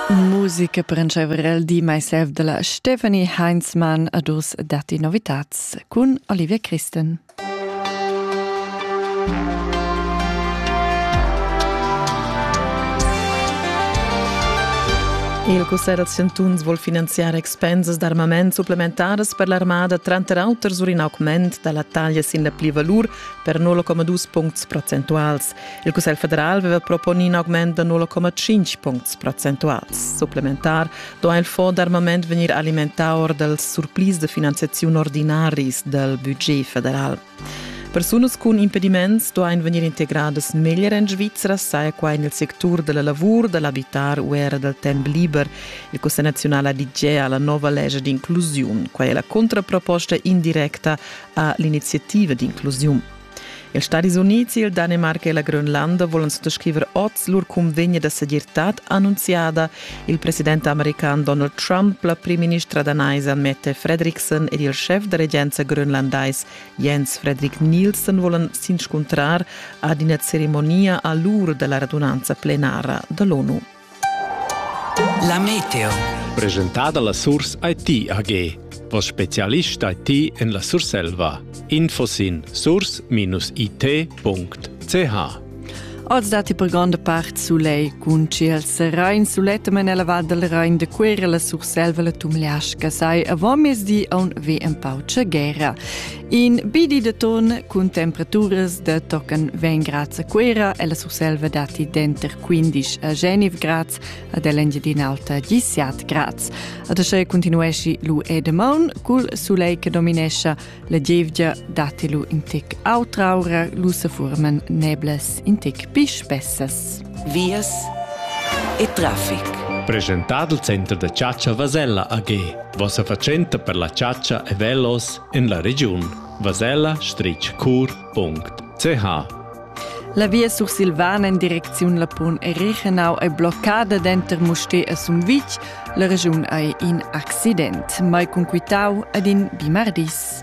Musica per entscheiver di myself della Stephanie Heinzmann a dus datti novitats cun Olivia Christen. Il Cussegl da Chantuns vuol finanziar expensas d'armament supplementaras per l'armada tranter auter sur in augment da la taglia sin la plivalur per 0,2 puncts procentuals. Il Cussegl federal aveva proponi in augment da 0,5 puncts procentuals. Supplementar do il fond d'armament vegnir alimentà or dals surplis de finanziaziun ordinaris dal budget federal. Persunas cun impediments duain vegnir integradas meglier en Svizzera, saja quai nel sectur della lavur, dell'abitar u era dal temp liber. Il Cussegl nazionale ha la nova legge d'inclusione. Quai è la contraproposta indirecta a l'iniziativa d'inclusione. Ils Stadis Unids, il Danemarca e la Grönlanda volan suttascriver oz lur cunvegna da segirtad annunziada. Il president american Donald Trump, la primministra danaisa Mette Fredriksen ed il schef da regenza grönlandais Jens Fredrik Nielsen volan s'inscuntrar ad ina ceremonia a l'ur da la radunanza plenara da l'ONU. La meteo. Presentada la Surs IT AG. Vos specialist IT en la Surselva. Info sin surs-it.ch Oz datti per gronda part sulei cun ciel serain sulettama nella Val del Rhein de Cuera la Surselva la Tumleasca sai avant mezdi a un ve un pau guerra. In bi di de ton cun temperaturas de tocan vegn grads a Cuera e la Surselva dati denter 15 a Geneve grads ad l'Engiadina Alta 17 grads. Ad asce continuesci lu Edemaun cul sulei che dominescia la gievgia dati lu in tec autraura lu se forman neblas in tec pi spessas. Vias e traffic. Presentad il center da chatscha Vasella AG. Vossa fatschenta per la chatscha e velos en la regiun vasella-cur.ch. La via sursilvana en direcziun Lapun è Reichenau è bloccada denter Musté e Sumvitg. La regiun ei in accident, mai conquitau ad in bimardis.